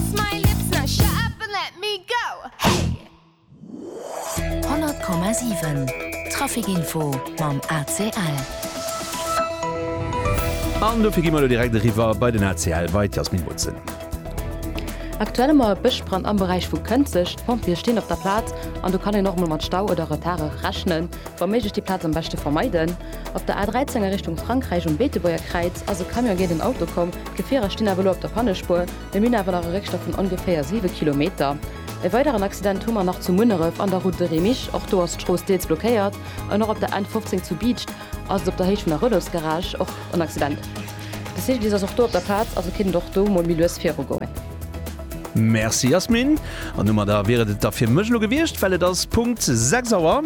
Lips my lips now shut up and let me go hey! 100,7 Traficinfo mam ACL. An dofir gi mer elo direkt eriwwer bei den ACL, bei d'Jasmin Botzen. Aktuell hu mer e Bëschbrand am Beräich vu Kënzeg. D'Pompjeeë stinn op der Plaz an do kann een och emol mat Stau oder Retarde rechnen. Wa méiglech déi Plaz am beschte vermeiden. Op der A13 a Richtung Frankräich um Beetebuerger Kräiz ass e Camion géint en Auto komm. D'Gefierer stinn awer elo op der Pannespuer. Mir hunn awer nach e Réckstopp vun ongeféier 7 Kilometer. E weideren Accident hu mer nach zu Munneref an der Route de Remich. Och do ass d'Strooss deels blockéiert. An och op der N15 zu Biicht ass et op der Héicht vun der Relosgarage och en Accident. De Cyclist ass och do op der Plaz, also kéint et och do mol méi lues viru goen. Merci Yasmine. An domadder wier et et da fir mech elo gewiescht, well et ass Punkt 6 Auer.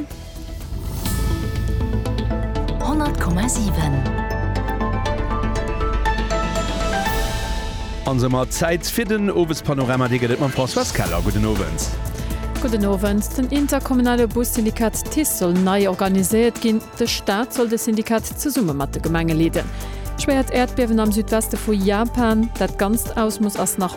An somat Zäit fir den Owespanorama. Dee gëtt et mam Françoise Keller. Gudden Owend. Gudden Owend. Den interkommunale Bussyndikat TICE soll nei organiséiert ginn. De Staat soll de Syndikat zesumme mat de Gemenge leeden. Schwéiert Äerdbiewen am Südweste vu Japan, dat ganzt Ausmooss ass nach.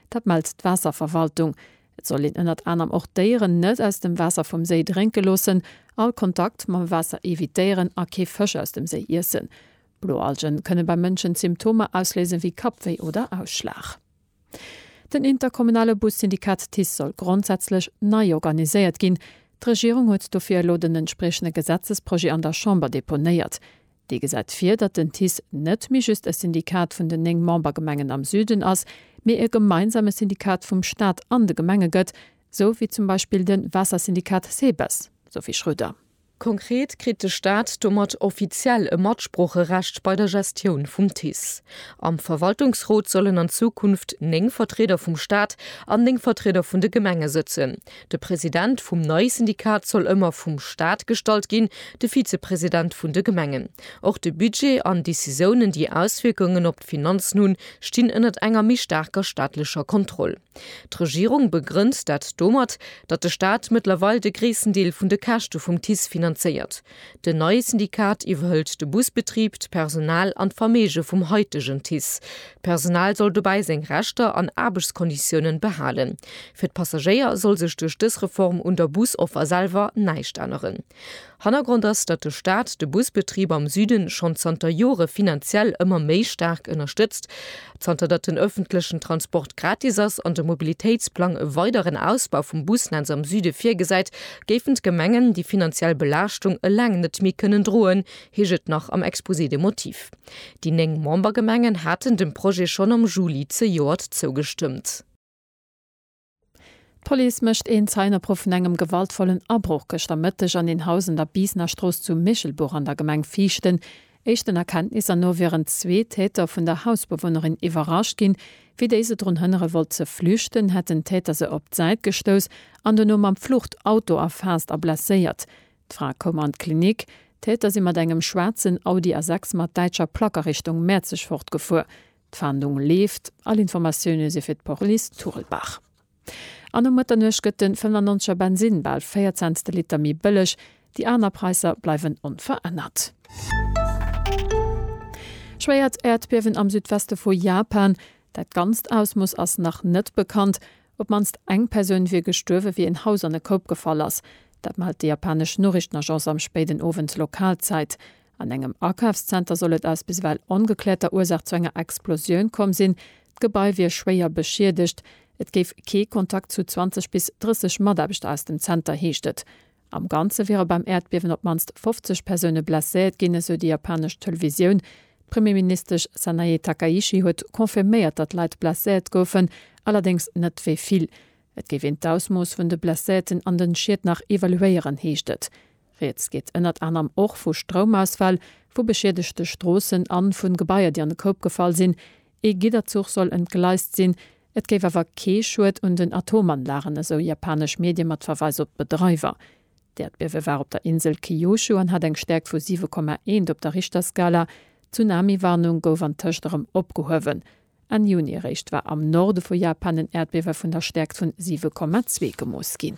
Dat mellt d'Waasserverwaltung. Et soll een ënnert anerem och d'Déieren net aus dem Waasser vum Séi drénke loossen, all Kontakt mam Waasser evitéieren a kee Fësch aus dem Séi iessen. Bloalgen kënne beim Mënschen Symptomer ausléisen, wéi Kappwéi oder Ausschlag. Den interkommunale Bussyndikat TICE soll grondsätzlech nei organiséiert ginn. D'Regierung huet dofir elo den entspriechende Gesetzesprojet an der Chamber deponéiert. Dee gesäit vir, datt den TICE net méi just e Syndikat vun den néng Membergemengen am Süden ass, mee e gemeinsame Syndikat vum Staat an de Gemenge gëtt, sou wéi zum Beispill de Waassersyndikat SEBES. Sophie Schröder. Konkret kritt de Staat domat offiziell e Matsproocherecht bei der Gestioun vum TICE. Am Verwaltungsrot sollen an Zukunft néng Vertrieder vum Staat an néng Vertrieder vun de Gemenge sëtzen. De President vum neie Syndikat soll ëmmer vum Staat gestallt ginn, de Vizepresident vun de Gemengen. Och de Budget an Decisiounen, déi Auswierkungen op d'Finanzen hunn, stinn ënnert enger méi staarker staatlecher Kontroll. D'Regierung begrënnt dat domat, datt de Staat mëttlerweil de gréissten Deel vun de Käschte vum TICE finanzéiert. Den neie Syndikat iwwerhëlt de Busbetrib, d'Personal an d'Verméige vum haitegen TICE. D'Personal soll dobäi seng Rechter an Aarbechtskonditiounen behalen. Fir d'Passagéier soll sech duerch dës Reform un der Busoffer selwer näischt änneren. Hannergrond ass, datt de Staat de Busbetrib am Süden schonn zanter Jore finanziell ëmmer méi staark ënnerstëtzt Zanter datt den ëffentlechen Transport gratis ass an de Mobilitéitsplang e weideren Ausbau vum Busnetz am Süde virgesäit, géifen d'Gemengen déi finanziell Belaaschtung eleng net méi kënnen droen, heescht et nach am Exposé des motifs. Déi néng Membergemengen haten dem Projet schonn am Juli zejoert zougestëmmt. D'Police mécht een Zeienopruff vun engem gewaltvollen Abroch gëschter Mëtteg an een Haus an der Biisnerstrooss zu Michelbuch an der Gemeng Viichten. Éischten Erkenntnisser no wieren zwee Täter vun der Hausbewunnerin iwwerrascht ginn. Wéi déi se drun hënnere wollt ze flüchten, hätt den Täter se op d'Säit gestouss an dono mam Fluchtauto erfaasst a blesséiert. D'Fra koum an d'Klinik. D'Täter si mat engem schwaarzen Audi A6 mat däitscher Plack a Richtung Mäerzeg fortgefuer. D'Fahndung leeft, all Informatioune si fir d'Police Turlbach. An um Mëtternuecht gëtt den 95er Bensinn bal 4 Cents de Liter méi bëlleg, déi aner Praisser bleiwen onverännert. Schwéiert Äerdbiewen am Südweste vu Japan, dat ganzt Ausmooss ass nach net bekannt. Op d'mannst eng Persoun wier gestuerwe wéi en Haus an e Koup gefall ass. Dat mellt déi japanesch Noriichtenagence am spéiden Owend Lokalzäit. An engem Akafszenter soll et aus biswell ongekläerter Ursaach zu enger Explosioun komm sinn. D'Gebai wier schwéier beschiedegt. Et géif kee Kontakt zu 20 bis 30 Mataarbechter aus dem Zenter, heescht et. Am Ganze wiere beim Äerdbiewen op d'mannst 50 Persoune blesséiert ginn, esou déi japanesch Televisioun. D'Premierministesch Sanae Takaichi huet confirméiert, datt Leit blesséiert goufen, allerdéngs net wéi vill. Et géif een d'Ausmooss vun de Blesséierten an den Schied nach evaluéieren, heescht et. Rieds geet ënnert anerem och vu Stroumausfäll, vu beschiedegte Stroossen a vun Gebaier, déi an de Koup gefall sinn. Ee Gidderzuch soll entgleist sinn. Et géif awer kee Schued un den Atomanlagen, esou japanesch Medie mat Verweis op d'Bedreiwer. D'Äerdbiewe war op der Insel Kyushu an hat eng Stäerkt vu 7,1 op der Richterskala. D'Tsunami-Warnung gouf antëscht erëm opgehuewen. Enn Juni eréischt war am Norde vu Japan en Äerdbiewe vun der Stäerkt vun 7,2 gemooss ginn.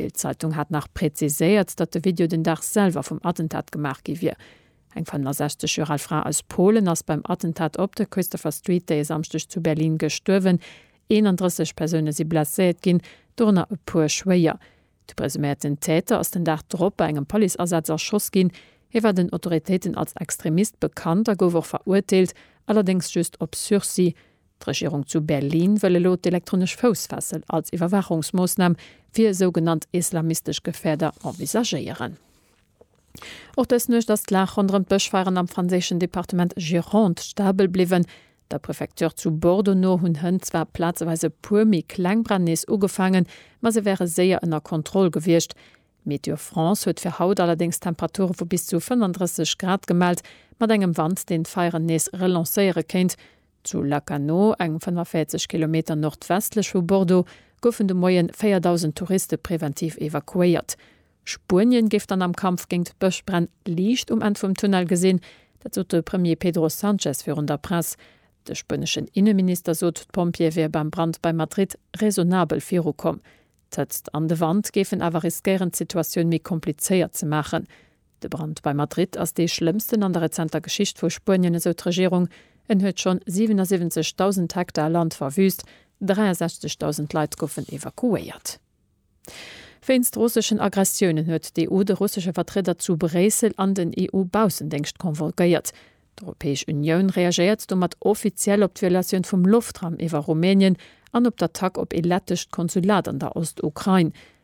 D'Bild-Zeitung hat nach präziséiert, datt de Video den Dag selwer vum Attentat gemaach gi wier. Eng 65 Joer al Fra aus Polen ass beim Attentat op der Christopher Street dee Samschdeg zu Berlin gestuerwen. 31 Persoune si blesséiert ginn, dorënner e puer schwéier. De presuméierten Täter ass den Dag drop bei engem Policeasaz erschoss ginn. Hie war den Autoritéiten als Extremist bekannt a gouf och verurteelt, allerdéngs just op Sursis. D'Regierung zu Berlin wëll elo d'elektronesch Foussfessel als Iwwerwaachungsmoossnam fir sougenannt islamistesch Gefäerder envisagéieren. Och dës Nuecht ass d'Lag ronderëm d'Bëschfeieren am franséischen Departement Gironde stabel bliwwen. Der Prefecture zu Bordeaux no hunn Hënn zwar plazeweis e puer méi kleng Bränn nees ugefaangen, ma se wäre séier ënner Kontroll gewiescht. Météo France huet fir haut allerdéngs Temperature vu bis zu 35 Grad gemellt, mat engem Wand, deen d'Feieren nees relancéiere kéint. Zu Lacanau, eng 45 Kilometer nordwestlech vu Bordeaux, goufen de Moie 4.000 Touriste preventiv evakuéiert. Spuenien géif dann am Kampf géint d'Bëschbränn Liicht um Enn vum Tunnel gesinn. Dat sot de Premier Pedro Sanchez virun der Press. De spueneschen Inneminister sot, d'Pompjeeë wiere beim Brand bei Madrid raisonnabel virukomm. D'Hëtzt an de Wand géifen awer riskéieren, d'Situatioun méi komplizéiert ze maachen. De Brand bei Madrid ass dee schlëmmsten an der rezenter Geschicht vu Spuenien, esou d'Regierung. En huet schonn 77.000 Hektar Land verwüüst, 63.000 Leit goufen evakuéiert. Wéinst russeschen Aggressiounen huet d'EU de russesche Vertrieder zu Bréissel an den EU-Baussendéngscht convolguéiert. D'Europäesch Unioun reagéiert domat offiziell op d'Violatioun vum Loftraum iwwer Rumänien an op d'Attack op ee lettescht Konsulat an der Ost-Ukrain.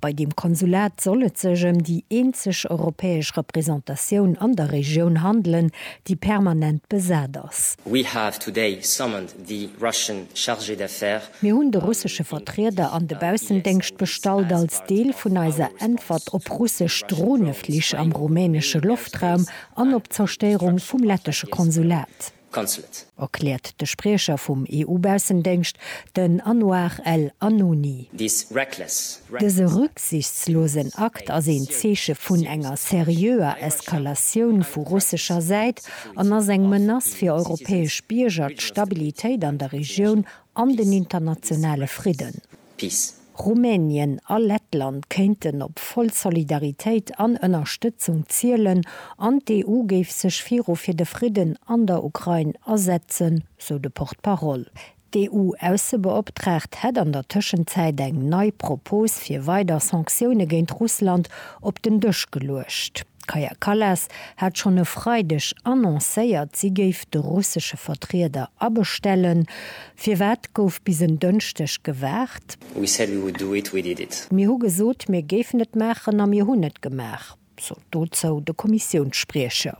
Bei deem Konsulat soll et sech ëm déi eenzeg europäesch Représentatioun an der Regioun handelen, déi permanent besat ass. We have today summoned the Russian Chargé d'Affaires. Mir hunn de russesche Vertrieder an de Baussendéngscht bestallt als Deel vun eiser Äntwert op russesch Droneflich am rumänesche Loftraum an op d'Zerstéierung vum lettesche Konsulat. Council et. Erkläert de Spriecher vum EU-Baussendéngscht, den Anouar El Announi. Dëse rücksichtslosen Akt ass een Zeeche vun enger seriöer Eskalatioun vu russescher Säit an ass eng Menace fir europäesch Bierger, d'Stabilitéit an der Regioun an den internationale Fridden. Peace. Rumänien a Lettland kéinten op voll Solidaritéit an Ënnerstëtzung zielen an d'EU géif sech viru fir de Fridden an der Ukrain asetzen, sou de Porte-parole. D'EU-Aussebeoptraagt hätt an der Tëschenzäit eng nei Propos fir weider Sanktioune géint Russland op den Dësch geluecht. D'Kaja Kallas hat schonn e Freideg annoncéiert, si géif de russesche Vertrieder abestellen. Firwat gouf bis en Dënschdeg gewaart? We said we would do it, we did it. Mir hu gesot, mir géifen et maachen a mir hunn et gemaach, sot dozou de Kommissiounsspriecher.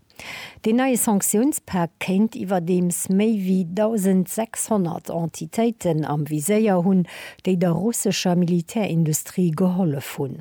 Deen neie Sanktiounspak kéint iwwerdeems méi wéi 1.600 Entitéiten am Viséier hunn, déi der russescher Militärindustrie gehollef hunn.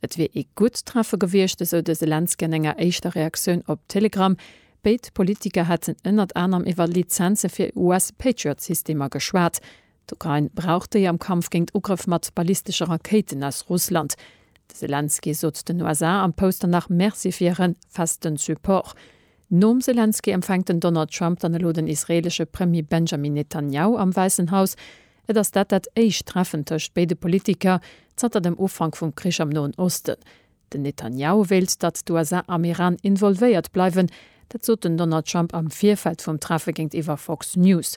Et wier ee gutt Treffe gewiescht, esou de Selenskyj an enger éischter Reaktioun op Telegram. Béid Politiker hätten ënnert anerem iwwer Lizenze fir US-Patriot-Systemer geschwat. D'Ukrain brauch déi am Kampf géint Ugrëff mat ballistesche Rakéiten aus Russland. De Selenskyj sot den USA am Poster nach Merci fir hire festen Support. Nom Selenskyj empfänkt den Donald Trump dann elo den israeelesche Premier Benjamin Netanjahu am Wäissen Haus. Et ass dat dat éischt Treffen tëscht béide Politiker zanter dem Ufank vum Krich am Noen Osten. Den Netanjahu wéilt, datt d'USA am Iran involvéiert bleiwen. Dat sot den Donald Trump am Virfeld vum Treffe géintiwwer Fox News.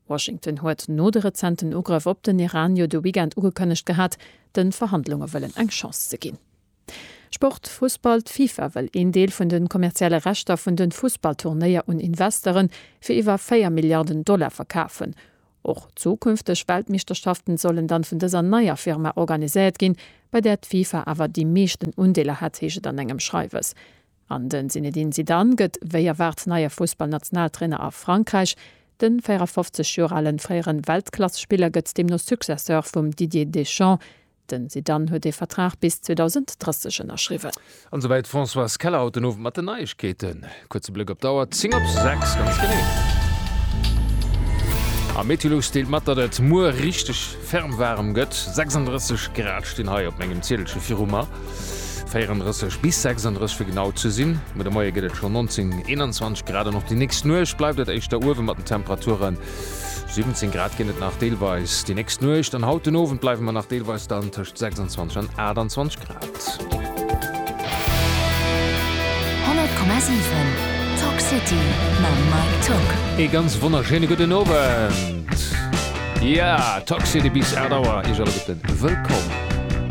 Washington huet no de rezenten Ugrëff op den Iran jo de Weekend ugekënnegt gehat, de Verhandlunge wëllen eng Chance ze ginn. Sport, Fussball, D'FIFA wëll een Deel vun de kommerzielle Rechter vun de Fussballturnéier un Investere fir iwwer 4 Milliarden Dollar verkafen. Och zukünfteg Weltmeeschterschaften sollen dann vun dëser neier Firma organiséiert ginn, bei där d'FIFA awer déi meeschten Undeeler hätt, heescht et an engem Schreiwes. An de Zinedine Zidane gëtt wéi erwaart neie Fussballnationaltrainer a Frankräich. De 54 Joer ale fréiere Weltklass-Spiller gëtt deemno Successeur vum Didier Deschamps, Den Zidane huet ee Vertrag bis 2030 ënnerschriwwen. An esouwäit d'Françoise Keller haut den Owend mat den Neiegkeeten. Kuerze Blëck op d'Auer, 10 op 6 ganz genee. A Meteolux deelt mat, datt et muer richteg ferm waarem gëtt, 36 Grad stinn hei op mengem Ziedelche viru mer, 34 bis 36 fir genau ze sinn. Muer de Moie gëtt et schonn 19, 21 Grad an och déi nächst Nuecht bleift et éischter uewe mat den Temperaturen. 17 Grad ginn et nach deelweis déi nächst Nuecht an haut den Owend bleiwe mer nach deelweis dann tëscht 26 an 28 Grad. 100,7 Talk City mam Mike Tock. Ee ganz wonnerschéine gudden Owend. Jo, Talk City bis 8 Auer, iech alleguerte wëllkomm.